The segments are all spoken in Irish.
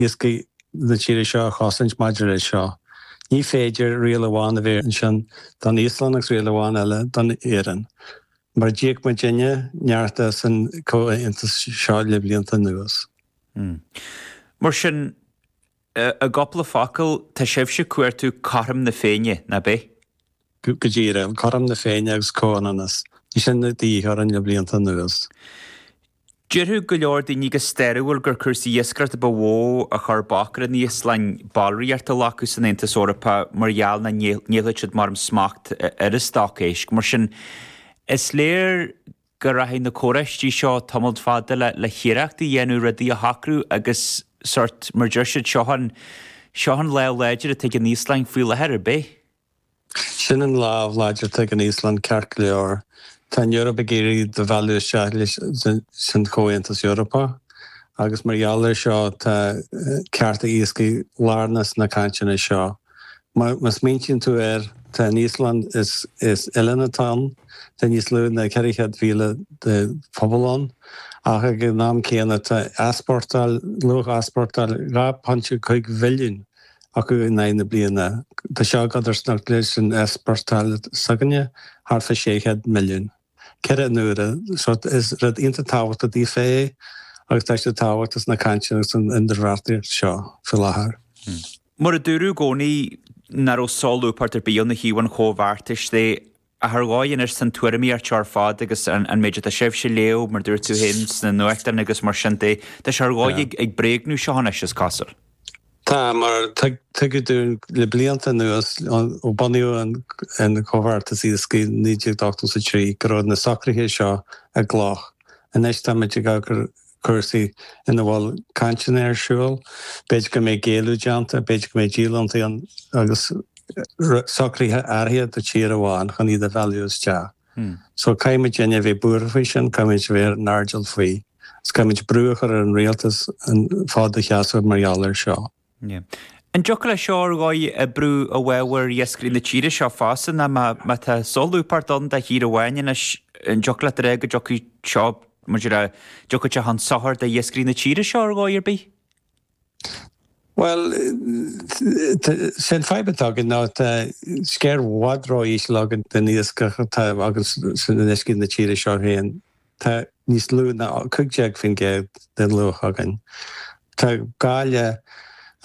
iascaigh na tíre seo a chosaint maidir leis seo. Ní féidir riail amháin a bheith ansin don Íoslainn agus riail amháin eile don Éirinn, mar d'íoc muidinne neart as an gcomhaontas seo le blianta anuas. Mar sin, i gcupla focal, tá sibhse ag cuartú cothrom na féinne, nach bea? Go díreach. Cothrom na féinne agus comhionannas. Ní sin a bhí againn le blianta anuas. Déarfadh go leor daoine go stairiúil gur cúrsaí iascaireachta ba mhó a chuir bac ar an Íoslainn ballraíocht a ghlacadh san Aontas Eorpach mar gheall nach ngéillfeadh siad maram smacht ar a stoc éisc. Mar sin, is léir go rachaidh na comhráití seo tamalt fada le hiarracht a dhéanamh rudaí a shocrú agus sort, mar deir siad, seo an lámh láidir atá ag an Íoslainn faoi láthair ar bith. Sin an lámh láidir atá ag an Íoslainn ceart go leor. Tá an Eoraip ag iarraidh iad a mhealladh isteach sa Chomhaontas Eorpach agus mar gheall air seo tá cearta iascaigh lárnach sna cainteanna seo. Má smaointíonn tú air tá an Íoslainn, is oileán atá ann, tá níos lú ná 400,000 de phobal ann ach ag an am céanna tá easpórtáil, luach easpórtáil 2.5 bhilliún acu in aghaidh na bliana. Tá seo i gcodarsnacht leis an easpórtáil s'againne, thart fá 600 milliún. Ceithre huaire. So is rud iontach tábhachtach daofa é agus tá sé tábhachtach sna cainteanna agus san idirbheartaíocht seo faoi láthair. Mar a dúradh i gcónaí, nach raibh solúbthacht ar bith ó thaobh an Chomhbheartais de ar dhóigh anois na tuairimí seo ar fad agus an méid atá sibhse ag léamh mar dúirt tú féin sna nuachtáin agus mar sin de tá sé ar dhóigh ag bréagnú seo anois is cosúil. Tá, mar tugadh dúinn le blianta anuas ó bunaíodh an Comhbheartas Iascaigh 1983 go raibh na socruithe seo i gcloch. Anois táimid ag cur. cúrsaí ina bhfuil cainteanna ar siúl. B'fhéidir go mbeidh géilleadh déanta, b'fhéidir go mbeidh díolúintí ann agus socruithe áirithe do tír amháin chun iad a mhealladh isteach. So caithfimidinne a bheith buartha faoi sin, caithfimid a bheith ar an airdeall faoi, agus caithfimid brú a chur ar an rialtas an fód a sheasamh mar gheall air seo. An dtiocfadh leis seo ar dhóigh oibriú i bhfabhar iascairí na tíre seo fosta ná má tá solúbthacht ann do thír amháin anois an dtiocfadh leat a rá go dtiocfadh seo, muid a rá, go dtiocfadh sé chun sochair do iascairí na tíre seo ar dhóigh ar bith? Bhuel, sé an fadhb atá againn ná tá sciar i bhfad ró-íseal againn den iascach atá againn sna farraigí na tíre seo féin. Tá níos lú ná 15% den luach againn. Tá gá le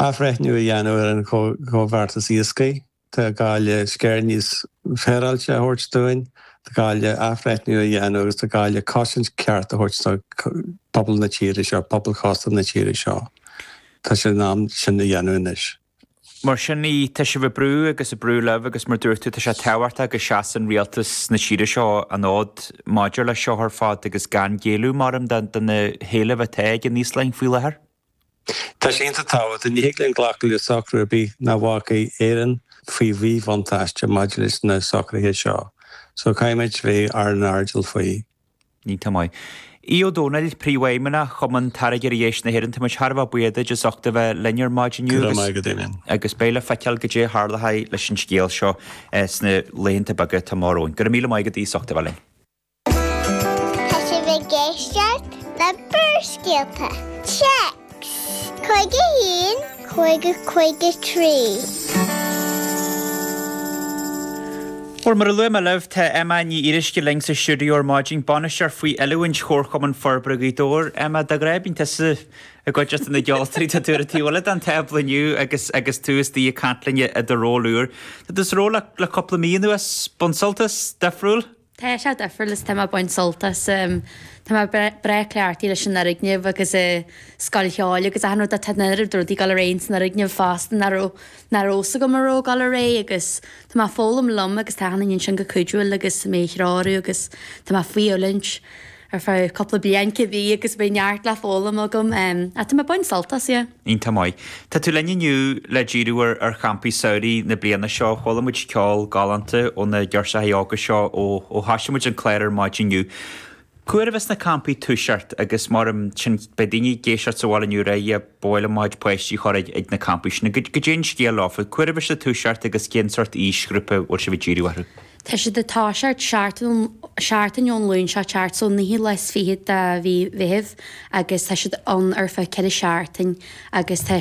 athbhreithniú a dhéanamh ar an gComhbheartas Iascaigh, tá gá le scair níos féaráilte a thabhairt dúinn, tá gá le athbhreithniú a dhéanamh agus tá gá le cosaint ceart a thabhairt do pobal na tíre seo, pobal cósta na tíre seo. Tá sé in am sin a dhéanamh anois. Mar sin í, tá sibh ag brú agus ag brú libh agus mar dúirt tú, tá sé tábhachtach go seasann rialtas na tíre seo an fód maidir leis seo ar fad agus gan géilleadh, maram, do na héilimh atá ag an Íoslainn faoi láthair. Tá sé iontach tábhachtach. Ní thig linn glacadh le socrú ar bith nach bhfágfaidh Éirinn faoi mhíbhuntáiste maidir leis na socruithe seo. So caithfimid bheith ar an airdeall faoi. Iontach maith. Aodh Ó Dónaill, Príomhfheidhmeannach Chumann Táirgeoirí Éisc na hÉireann, Tá muid thar a bheith buíoch duit as ucht a bheith linn ar maidin inniu agus agus beidh le feiceáil goidé a tharlóchaidh leis an scéal seo sna laethanta beaga atá amach romhainn. Go raibh míle maith agat Aodh as ucht a bheith linn. Tá sibh ag éisteacht le Barrscéalta, Téacs! 51 50 53. Bhuel, mar a luaigh mé libh, tá Emma Ní Fhíoruisce linn sa stiúideo ar maidin, bainisteoir faoi oiliúint Chomharchumann Forbartha Ghaoth Dobhair. Emma, de ghnáth bíonn tusa istigh le cuid de na ceoltóirí tá tú ar an taobh eile den tábla inniu agus agus tú is tú ag caint linn i do ról úr. Tá tú sa ról le cúpla mí anuas, ag baint sult as, difriúil? Tá sé difriúil is tá mé ag baint sult as. Tá mé breá cleachtaithe leis an fhoirgneamh agus an Scoil Cheoil agus achan rud ach tá an oiread rudaí ag dul ar aghaidh san fhoirgneamh fosta nach raibh nár fhios agam a raibh ag dul ar aghaidh agus tá mé ag foghlaim liom agus tá Cathal ansin ag cuidiú liom agus mé a threorú agus tá mé faoi oiliúint. Ar feadh cúpla bliain cibé agus beidh neart le foghlaim agam ach tá mé ag baint sult as, yeah. Iontach maith. Tá tú linn inniu le díriú ar champaí samhraidh na bliana seo. Chuala muid ceol galánta ó na girseachaí óga seo ó thoisigh muid an clár ar maidin inniu. Cá huair a bheas na campaí ag toiseacht agus mura sin beidh daoine ag éisteacht agus sa bhaile inniu ar mhaith leo a bpáistí a chur ag na campaí sin. Goidé an scéal leofa. Cá huair a bheas siad ag toiseacht agus cén sórt aoisghrúpa bhfuil sibh ag díriú orthu? Tá siad ag toiseacht seachtain ón Luan seo chugainn, so naoi lá is fichead de mhí Mheithimh agus tá siad ann ar feadh ceithre seachtain agus tá.